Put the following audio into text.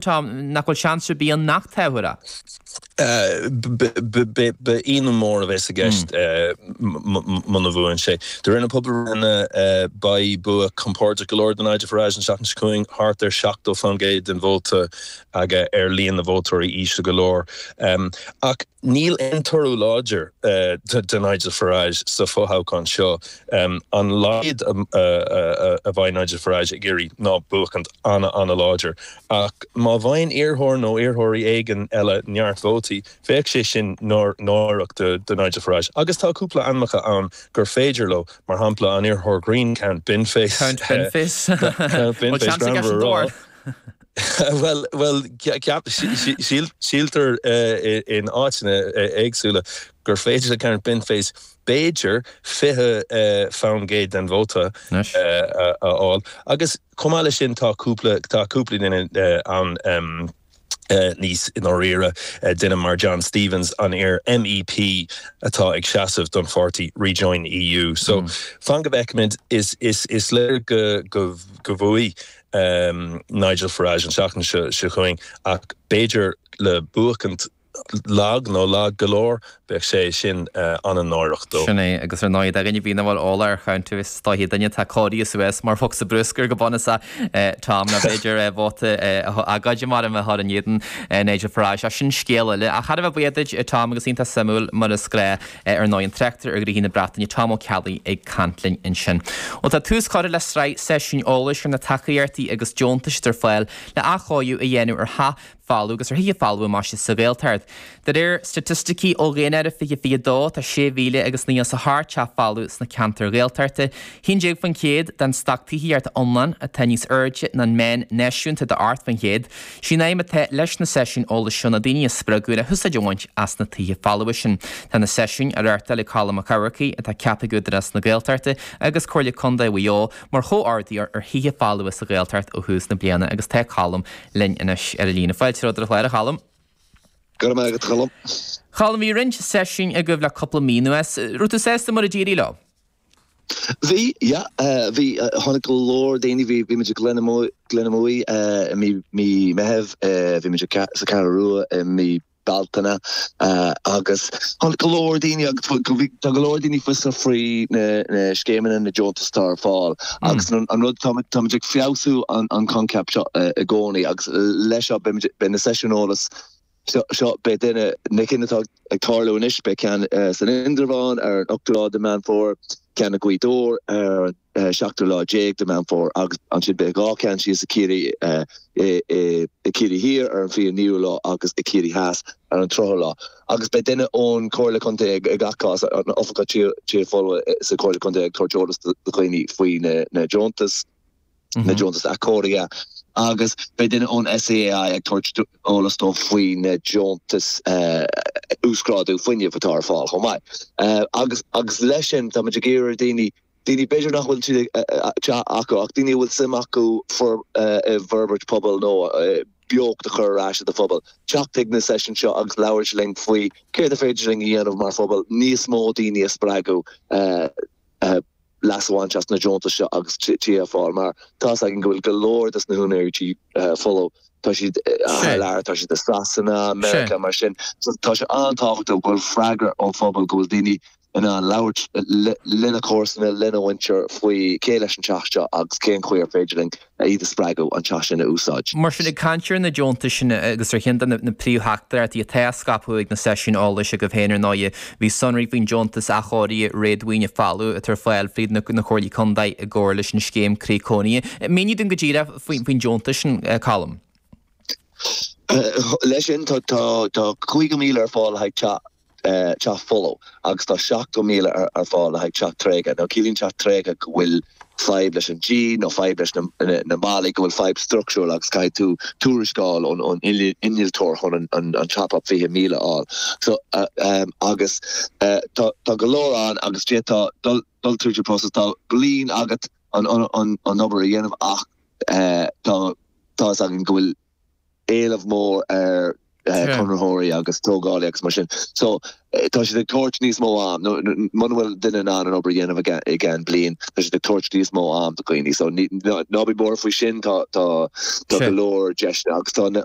Tom, Níl seans ar bith ann nach tabharfar a? Beidh ionadh mór a bheas i gceist muna mbuann sé. De réir na pobalbhreitheanna beidh bua compordach go leor do Nigel Farage an seachtain seo chugainn, thart ar 70% den vóta aige ach líon na vótóirí íseal go leor. Ach. Níl aon toradh láidir do Nigel Farage sa bhfothoghchán seo. An laghad a bheidh Nigel Farage ag iarraidh ná buachaint an-, an-láidir. Ach má bhfaigheann iarrthóir nó iarrthóirí éigin eile neart vótaí, bheadh sé sin náireach do Nigel Farage. Agus tá cúpla ainmeacha ann gur féidir leo, mar shampla, an iarrthóir grinn, Count Binface, Count Binface, Count Binface, greannmhar a rá. Bhuel, bhuel, ceap, síl, síltear in áiteanna éagsúla gur féidir le Count Binface b'fhéidir fiche faoin gcéad den vóta a fháil agus chomh maith leis sin tá cúpla, tá cúpla duine ann em níos i ndáiríre duine mar John Stevens an iar MEP atá ag seasamh don pháirtí Rejoin EU so fan go bhfeicimid is, is, is léir go, go, go bhuafaidh Nigel Farage an seachtain seo chugainn ach b'fhéidir le buachaint lag nó lag go leor, bheadh sé sin ana-náireach dó. Sin é, agus ar ndóigh, d'aon duine nach bhfuil eolas ar Count, is dóiche duine atá cóirithe suas mar bhosca bruscair go bun, is ea Tom, nó b'fhéidir vóta agóide mar a bheadh á chur in éadan Nigel Farage, ach sin scéal eile. Ach táimid thar a bheith buíoch duit, Tom, agus iontach suimiúil mar is gnáth. Ar ndóigh, an tráchtaire ar ghnóthaí na Breataine, Tom Ó Ceallaigh, ag caint linn ansin. Bhuel, tá tús curtha le sraith seisiúin eolais ar na tacaíochtaí agus deontais atá ar fáil le athchóiriú a dhéanamh ar thithe folmha agus ar thithe folmha anseo sa Ghaeltacht. De réir staitisticí ó dhaonáireamh 2022, tá 6,000 agus naoi is a hocht teach folamh sna ceantair Ghaeltachta, 11% den stoc tithíochta iomlán, atá níos airde ná an meán náisiúnta de 8%. Sí'n aidhm atá leis na seisiúin eolais seo ná daoine a spreagadh le húsáid a bhaint as na tithe folmha sin. Tá na seisiúin á reáchtáil ag Colm Mac Eachmharcaigh, atá ceaptha ag Údarás na Gaeltachta agus Comhairle Contae Mhaigh Eo, mar chomhordaitheoir ar thithe folmha sa Ghaeltacht ó thús na bliana agus tá Colm linn anois ar an líne. Fáilte romhat ar an chlár, a Choilm. Go raibh maith agat, a Choilm. A Choilm, bhí roinnt seisiúin agaibh le cúpla mí anuas. Raibh tú sásta mar a d'éirigh leo? Bhí, yeah, bhí, tháinig go leor daoine, bhí, bhímid i nGleann na Muaidhe, Gleann na Muaidhe, eh, i mí, mí Meithimh, eh, bhímid i Ca- sa Cheathrú Rua i mí Bealtaine, eh, agus tháinig go leor daoine agus bhfuil, go, bhí, tá go leor daoine fiosrach faoi na, na scéimeanna, na deontais atá ar fáil agus an, an rud, táimid, táimid ag feabhsú an, an coincheap seo i, i gcónaí agus leis seo beimid, beidh na seisiúin eolas Seo, seo, beidh duine, na cinn atá ag tarlú anois, beidh ceann san Indreabhán ar an ochtú lá de Meán Fómhair, ceann i Gaoth Dobhair ar an seachtú lá déag de Meán Fómhair agus ansin beidh dhá cheann síos i Ciarraí, i, i, i Ciarraí Thiar ar an fiche naoú lá agus i Ciarraí Theas ar an tríochadh lá. Agus beidh duine ón Chomhairle Chontae ag, ag gach cás, an Oifigeach Tithe, Tithe Folmha sa Chomhairle Chontae ag tabhairt eolas do dhaoine faoi na, na deontais. na deontas athchóirithe agus beidh duine ón SEAI ag tabhairt eolas dóibh faoi na deontais uasghrádú fuinnimh atá ar fáil chomh maith. Agus agus leis sin tá muid ag iarraidh daoine daoine b'fhéidir nach bhfuil tithe acu ach daoine a bhfuil suim acu i bhforbairt pobail nó beocht a chur ar ais i do phobal, teacht chuig na seisiúin seo agus labhairt linn faoi céard a féidir linn a dhéanamh mar phobal níos mó daoine a spreagadh. leas a bhaint as na deontais seo agus tithe ar fáil mar tá a fhios againn go bhfuil go leor dos na húinéirí tithe folmha. Tá siad thar lear, tá siad i Sasana, Meiriceá mar sin. So tá sé an-tábhachtach go bhfuil freagra ón phobal, go bhfuil daoine in ann labhairt lena comharsana, lena mhuintir faoi cé leis an teach seo agus cén chaoi ar féidir linn iad a spreagadh an teach sin a úsáid. Mar sin, ag caint ar na deontais sin agus ar cheann de na príomhtheachtaireachtaí atá á scaipeadh ag na seisiúin eolais agaibh féin ar ndóigh, bhí sonraí faoin deontas athchóirithe réadmhaoine folamh atá ar fáil fríd na Comhairlí Contae i gcomhar leis an scéim Croí Cónaithe. Mínigh dúinn go díreach faoin deontas sin, Colm. Leis sin tá €50,000 ar fáil le haghaidh teach. teach folamh agus tá seachtó míle ar fáil le haghaidh teach tréigthe. Nó ciallaíonn teach tréigthe go bhfuil fadhb leis an díon nó fadhb leis na ballaí, go bhfuil fadhb structural agus caithfidh tú tuarascáil ón innealtóir chun an top up fiche míle a fháil. So agus tá go leor ann agus iad ag dul tríd an process tá bliain agat an obair a dhéanamh ach tá a fhios againn go bhfuil éileamh mór ar conraitheoirí agus tógálaí agus mar sin. So tá siad ag tabhairt níos mó am nó muna bhfuil duine in ann an obair a dhéanamh i gceann bliain, tá siad ag tabhairt níos mó am do dhaoine. So ná bí buartha faoi sin, tá go leor deiseanna agus tá na